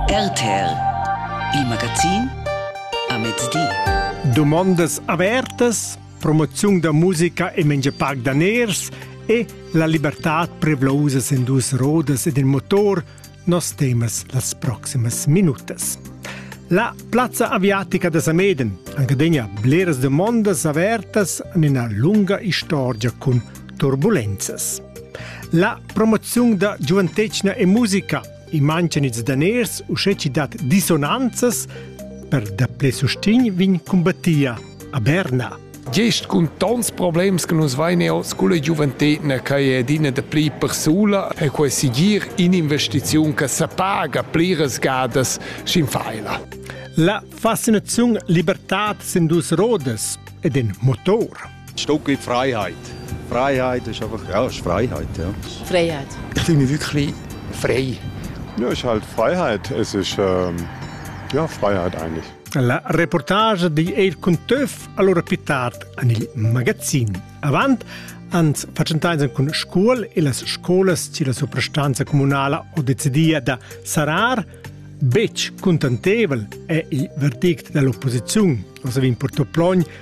RTL Il magazin a mezdi. Domandas avertas, promoziun da musica e mengia parc daners e la libertad prevlosa en dus rodas ed il motor nos temas las proximas minutas. La plazza aviatica da Sameden, anche degna bleras domandas avertas in una lunga istorgia con turbulenzas. La promoziun da giuventetgna e musica i mancan ils daners u sche ci dat dissonanzas per daple sustegn vin cumbattia a Berna. Gest cun tons problems che nus vein eo sculla giuventetna che è adina da pli persula e quei sigir in investiziun che sa paga pliras gadas sin faila. La fascinaziun libertad sin dus rodas ed in motor. Stückli Freiheit. Freiheit ist einfach, ja, ist Freiheit, ja. Freiheit. Ich fühle mich wirklich frei. Ja, ist halt Freiheit. Es ist, ähm, ja, Freiheit eigentlich. La reportage di Eir cun Töf allora più tard an il magazin. Avant ans facentaisen cun scuol e las scolas ci la soprastanza comunala ho decidia da sarar Betg contentevel è il verdict dell'opposizione, cosa vi importò plogn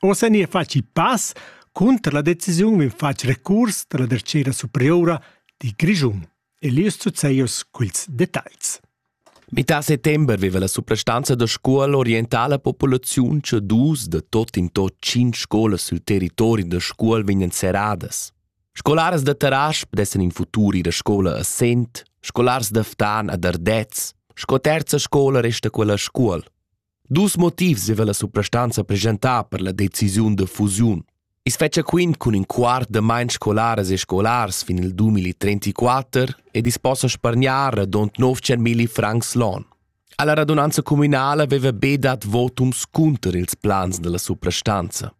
Ossa nia faci pass cunter la decisiun in fac recurs dalla Dertgera Superiora di Grischun. Elius Zuzzeios culs detagls. Mità settember veva la suprastanza da scuola orientala la populaziun che dus da tot in tot cinc scolas sul territori da scuol vegnan serradas. Scolaras da Tarasp dessen in futur ir a scola a Sent, scolars da Ftan a Dardez, sco terza scola resta quella scuol. Dus motivs zieva la suprastanza preschentà per la decisiun da fusiun. I's fetscha quint cun ün quart da main scolaras e scolars fin il 2034 ed i's possa spargnar radund 900.000 francs l'on. Alla radunanza communala veva be dat votums cunter ils plans della suprastanza.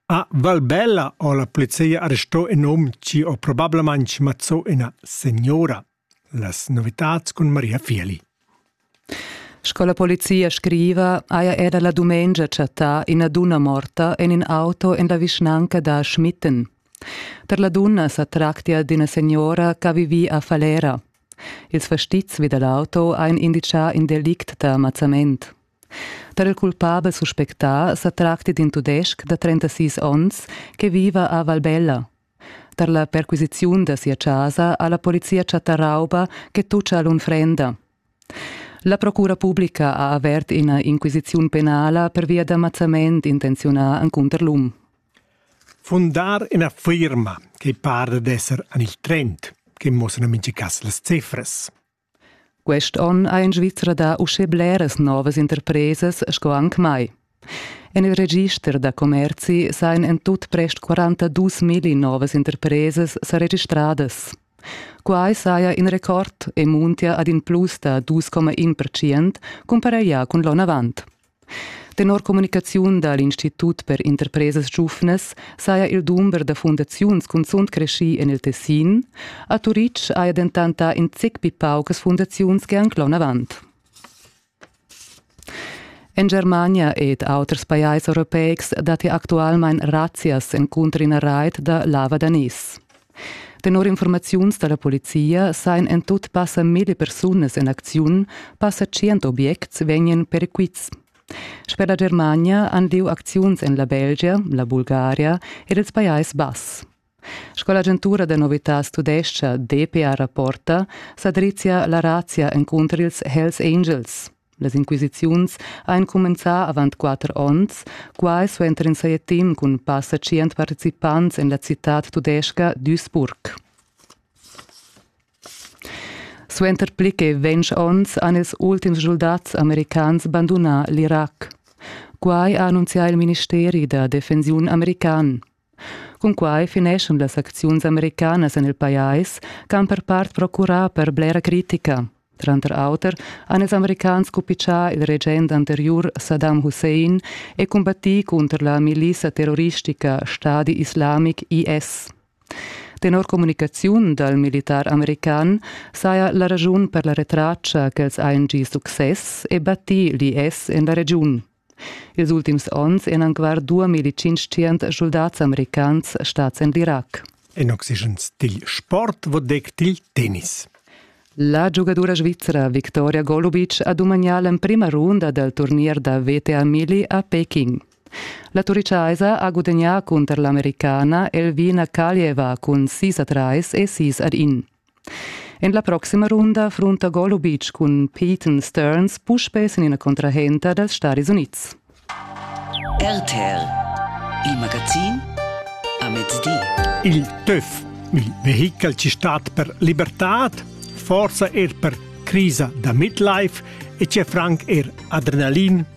A Valbella ho la polizia arrestò in hom chi ho probablamaing mazzò ina signora. Las novitads cun Maria Fieli. Sco la polizia scriva, haja era la dumengia chattà ina dunna morta en in auto en la vischnanca da Schmitten. Per la dunna sa tractia d'ina signora che ha vivì a Falera. Ils fastizs vi da l'auto han indicà in delict da mazzament. Tar il culpabel suspectà sa tracti d'in tudestg da 36 onns che viva a Valbella. Tar la perquisiziun da sia chasa ha la polizia chattà rauba che tutscha l'unfrenda. La procura publica ha avert ina inquisiziun penala pervia da mazzament intenziunà encunter l'um. Fundar ina firma che para d'esser en il trend, che muossano mintga cas las cifras. Quest onn ha en Svizra dà uschè bleras novas interpresas sco anc mai. En il register da commerzi sajan en tut prest 42.000 novas interpresas sa registradas. Quai saja in record e muntia ad in plus da 2,1 percent cumparaglià cun l'onn avant. Tenor communicaziun da l'Institut per interpresas giuvnas saja il dumber da fundaziuns cunzunt creschì en il Tessin. A Turitg haja dentant dà in zic pli paucas fundaziuns che anc l'onavant. En Germania ed auters pajais europeics datti actualmain razzias encunter ina rait da lavadanis. Tenor informaziuns da la polizia sajan en tut passa mille persunas en acziun, passa tschient objects vegnan perquits. Sper la Germania han lieu acziuns en la Belgia, la Bulgaria ed ils Pajais Bass. Sco l'agentura da novitads tudescha DPA rapporta, sa drizia la razia encunter ils Hells Angels. Las inquisiziuns ein cumenzà avant quater onns, quai suenter in saja team cun passa tschient participants en la citad tudesca Duisburg. Suenter pli che ventg onns han ils ultims schuldats americans bandunà l'Irac. Quai ha annunzià il ministeri da defensiun american. Cunquai fineschan las acziuns americanas en il pajais che han per part procurà per blera critica. Tranter auter han ils americans cupitschà il regent anteriur Saddam Hussein e combattì cunter la milissa terroristica Stadi Islamic IS. Tenor communicaziun dal militar american saja la ragiun per la retraccia ch'els hajan gì success e battì l'IS en la regiun. Ils ultims onns èn anc duamilitschintschient schuldats americans stads en l'Irac. En oxygens dil sport vo dec dil tennis. La giugadura svizra Victoria Golubic ha dumagnà l'emprima runda dal turnier da WTA Mili a Peking. La turiciaisa ha gudagnà cunter l'Americana Elvina Kaljeva cun 6 a 3 e 6 ad 1. En la proxima runda frunta Golubic cun Peyton Stearns puspè sin ina contrahenta dals Stadis Unids. RTL, il magazin a mezdi. Il TÜV, il vehichel ci stat per libertad, forsa er per crisa da midlife e c'è franc er adrenalin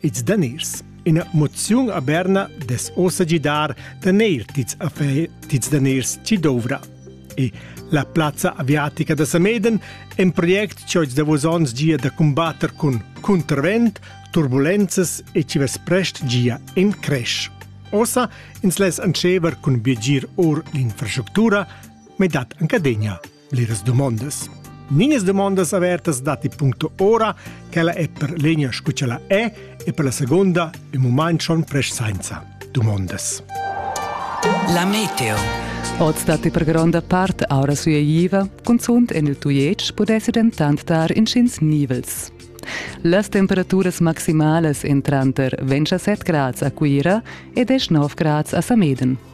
Ils daners. Ina moziun a Berna des ossa gidar daner tits a fe tits daners ci dovra. E la plazza aviatica da Sameden è un project che da vos ons gia da combatter con contravent, turbulenzas e ci ves prest gia in crash. Ossa ins les ancever cun biegir or l'infrastructura, me dat anca degna. Bleras dumondas. Ninas dumondas avertas datti puncto ora, quella è per l'egna scu ch'ella è e per la seconda ün mumaint schon presch sainza dumondas. La meteo. Oz datti per gronda part aura sueiva, cunzunt en il Tujetsch pudessi dentant dar inschins nivels. Las temperaturas maximalas en tranter 27 grads a Cuira e 19 grads a Sameden.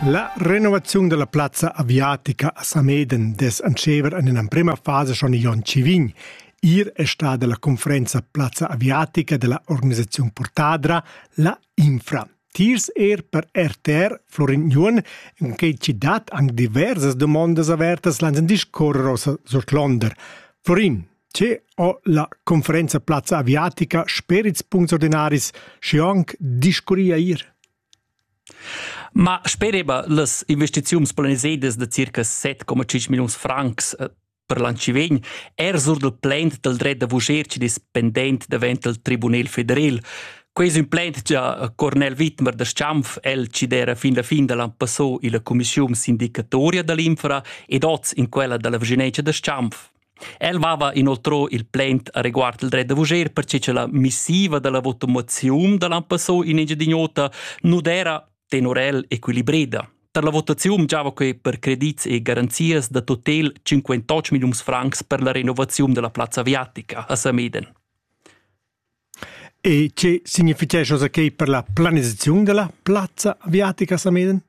La renovaziun della plazza aviatica a Sameden des antschever in emprema fase schon Jon Civign. Ir è stata la conferenza Plazza Aviatica della organizzazione Portadra, la Infra. Tiers er per RTR Florin Jun, in che ci dat anche diverse domande avertas lanzen discorrer aus Londer. Florin, Tge ho la conferenza plazza aviatica sper ils puncts ordinaris schi anc discurria ir? Ma spereba las investiziuns planisedas da circa 7,5 milliuns francs eh, per l'an chi vegn er sur del plant del dret da vuger ci dependent davent del Tribunel federal. Quei es ün plant già Cornel Wittmer da Schampf, el ci d'era fin la fin da l'an passò illa cumischiun sindicatoria dall'infra ed oz in quella dalla Viginencia da Schampf. El mava inoltrò il plaint reguard il dret da vuger perche cha la missiva da la votaziun da l'ampesso in Engiadin'Ota nu d'era tenor el equilibreda. Tar la votaziun giava que per credits e garanzias da totel 58 milliuns francs per la renovaziun della plazza aviatica a Sameden. E che signifitgescha oza quei per la planisaziun dalla plazza aviatica Sameden?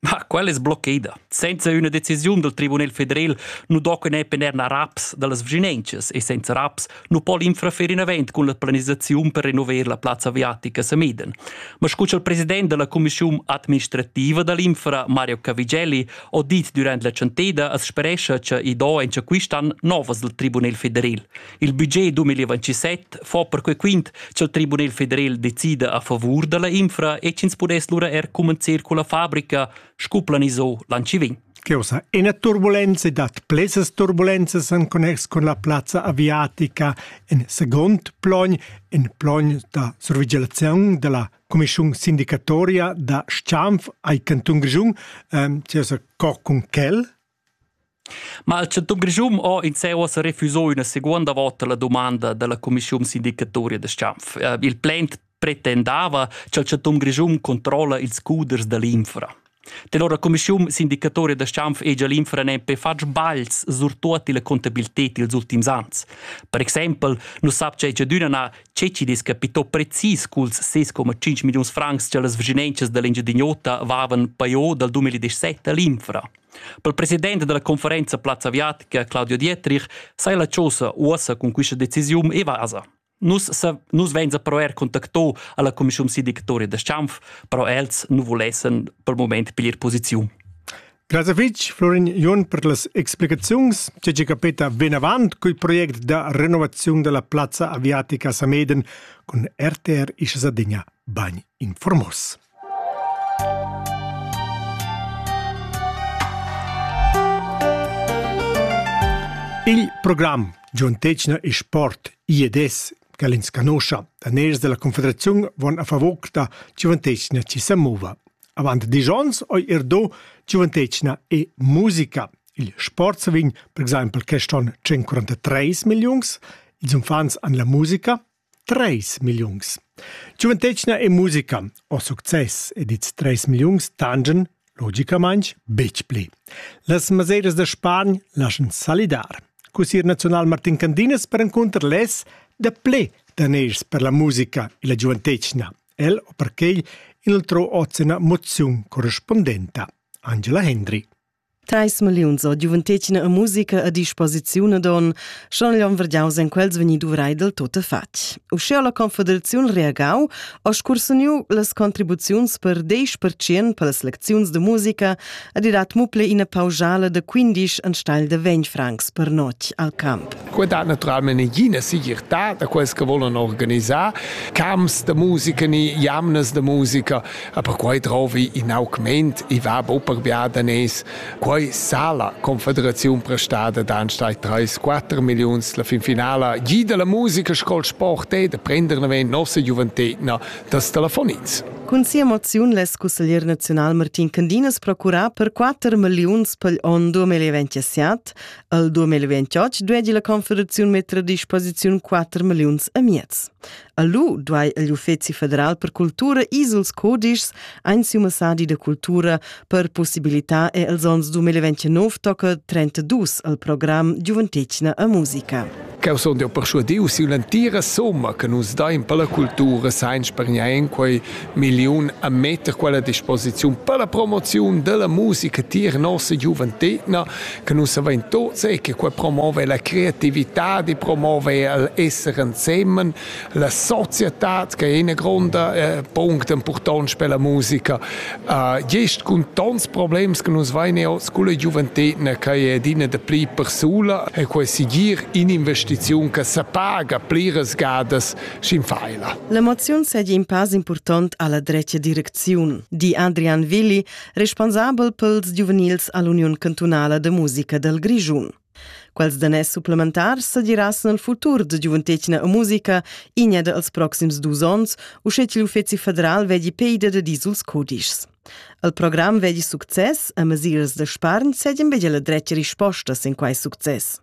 Ma quella es bloccada. Senza üna decisiun dal Tribunal federal nu do que ne penerna raps dallas vginenchas e senza raps nu po l'infrafer in avant cun la planisaziun per renover la plazza aviatica Sameden. Ma scu cha'l president della Commissiun administrativa dall'infra Mario Cavigelli ho dit durant la chanteda as sperescha cha i do encha quist'an novas dal Tribunal federal. Il budget 2027 fa perquei quint ch'el Tribunal federal decida a favur dalla infra e ch'ins pudess lura er commencer con la fabrica, sco planisò l'anci vegn. Cheusa ina turbulenza dat plesas turbulenzas en connex con la plazza aviatica en second plogn, en plogn da survigilazione della Commissione sindicatoria da Schanf ai Canton Grischun, ähm, cheusa co con quel Ma il chantun Grischun ho in se uossa refüso üna seguonda vota la dumanda da la cumischiun sindicatoria da s-chanf. Il plaint pretendava cha'l chantun Grischun controlla ils scuders da l'infra. Tenor la cumischiun sindicatoria da s-chanf hegia l'infra nempe fat sbaglis surtuot illa contabilited i'ls ultims ans. Per exaimpel nu sapcha Ecciadüna na che chi'd es capito precis culs 6,5 milliuns francs cha las vschinaunchas da l'Engiadin'Ota vavan pajo dal 2017 a l'infra. Per president dalla conferenza Plazza Viatica Claudio Dietrich sai la chosa uossa cun quista decisiun e vasa. Nus, nus venza però er contactò alla commissiun si dictori da Schanf, però els nu volessen per moment piglier posiziun. Grazie fitch, Florin Jon, per las explicaziuns. C'è ci capita ben avant col proiect da renovazione della piazza aviatica Sameden con RTR Ischsadigna Bagn informos. Il program Giuntetgna e sport IEDS che ins conoscia da ners della Confederazione von a favor da giuventetgna ci se mova. Avant dieci onns ho er do giuventetgna e musica. Il sport sa vegn per exempel quest on 143 millions. Ils infants han la musica Treis milliuns. Giuventetgna e musica ho success ed ils treis milliuns tangen logicamaing betg pli. Las maseiras da Spargn laschan salidar. Cussier naziunal Martin Candinas perencunter less da ple daners per la musica e la giuventetgna. El o perquei inoltrò hoz ina moziun correspondenta. Angela Hendry. Teis milliuns o giuventetgna e musica a disposiziun ad on, schon gli on vergiaus en quels vegni duvrai del tuttafatg. Usche ha la Confederaziun reagau, ho scursuniu las contribuziuns per 10% per las lecziuns de musica ed i dat muple ina pausala de 15 anstelle de 20 francs per notg al camp. Quei dat naturalmente ina segirtà da quels che volen organisar camps de musica ni jamnas de musica. Aber quai trovi in augment e va buper biadanès. Quai sa la Confederaziun prestada d'anstalt 3-4 millions la fin finala. Jida la musica scol sport e da prender na ven nossa giuventetna das telefonins. Cun sia moziun less cusseglier naziunal Martin Candinas procurar per 4 milliuns pel onn 2027. Al 2028 duegi la Confederaziun metter a disposiziun 4 milliuns a miez. A lu duai igl Uffeci federal per cultura isels codischs ein siu massadi da cultura per possibilitar e els onns 2029 tocca 32 al program Giuventetgna a musica. Cheu sun jeu perschuadiu siu l'entira somma che nus dain per la cultura sainz per niain quei milliun a metter quella disposiziun per la promoziun della musica tier nossa giuventetna che nus avain tuts è che qua promover la creativitad e promover l'esser ensemen, la società che è una grande eh, punct important per la musica. Uh, gest con tants problems che nus vein oz con la giuventina che è adina de pli persula e quei sigir in investiziun che se paga pliras gadas sin faila. L'emoziun seigi in pass important alla drecia direcziun, di Adrian Willi, responsabel pels giuvenils a l'Uniun cantunala da musica dal Grischun. Quels danès supplementars sa diràs nel futur da giuventetgna e musica inia dels proxims dus ons, uschè che l'Uffezi federal vedi peida da dizuls codischs. Al program vedi success e mesiras da spargn sedien vedi la dretga rispostas in quai success.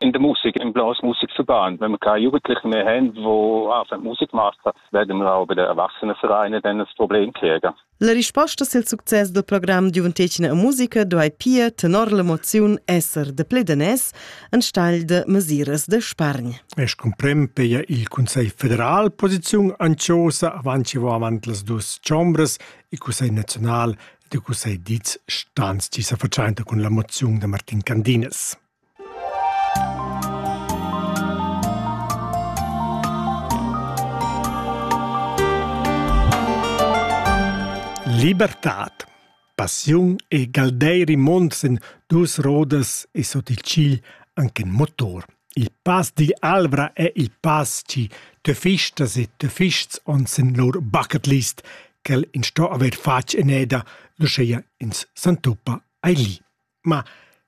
in de musik in blos musikverband wenn man kann jugendliche mehr haben wo auf musikmaster werden wir auch bei der erwachsenenvereine dann das problem kriegen La risposta sil success del program Giuventetgna e musica do ei pia tenor l'emoziun esser de pledanès enstagl de mesiras de spargn. Es comprem peia il Consell federal posiziun anciosa avanti vo avant las dus chombres il Consell nazional de Consell Diz stans tisa verzainta cun la moziun de Martin Candines. Libertad. Passiun e galdeiri mond sen dus rodas e sot il cigl anche in motor. Il pass digl Alvra è il pass ci töfistas e töfists on sen lur bucket list ch'el in sto aver fatg en eda, luscheia ins s'antuppa ai li. Ma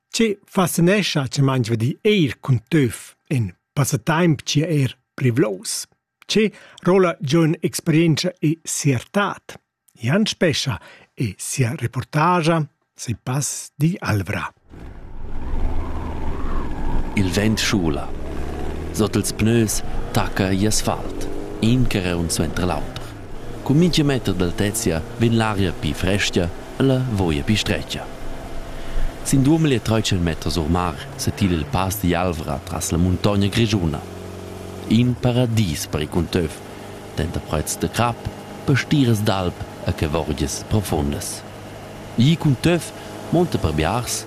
che fascinescha che mainsva dir eir cun töf in passataimp chi è eir privlous? Che roula giun experientscha e siertad? Jan Spescha e sia reportagia sei pass di Alvra. Il vent schula. Sot ils pneus tacca i asfalt, in che reun suenter l'auter. Cun mintga meter d'altezia vegn l'aria pli frestga e la voia pli stretga. Sin duamilli e tratg meters or mar setila il pass digl Alvra tras la muntogna grischuna. In paradis per il cunteuv, denter prets da crap, pastiras d'alp e cavorgias profundas. Igl cunteuv monta per biars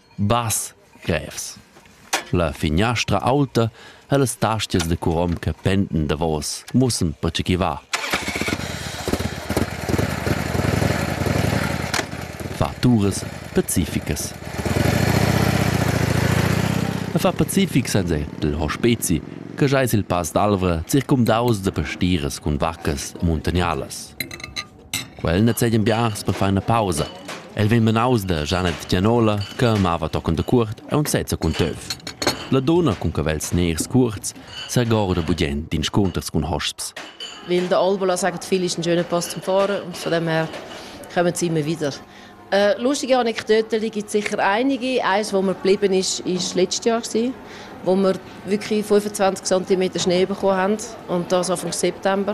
Bass, grevs. La finiastra aulta e las tastias da curom che pendan davos mussan pertge ch'i va. Faturas pacificas. E fa pacific senza ir dal hospezi che giais il pass d'Alvra circumdaus da pastiras cun vaccas e muntagnalas. Quel nezegian biars per far ina pausa. El vegn menaus da Janet Gianola che amava tochen dacuort aunc sezza cun töf. La dunna cun cavels ners cuorts segorda bugient d'inscunters cun hosps. Weil der Albola sagt, viele ist ein schöner Pass zum Fahren und von dem her kommen sie immer wieder. Äh, lustige Anekdoten gibt sicher einige. Eins, wo mir geblieben ist, ist letztes Jahr gewesen, wo wir wirklich 25 cm Schnee bekommen haben und das Anfang September.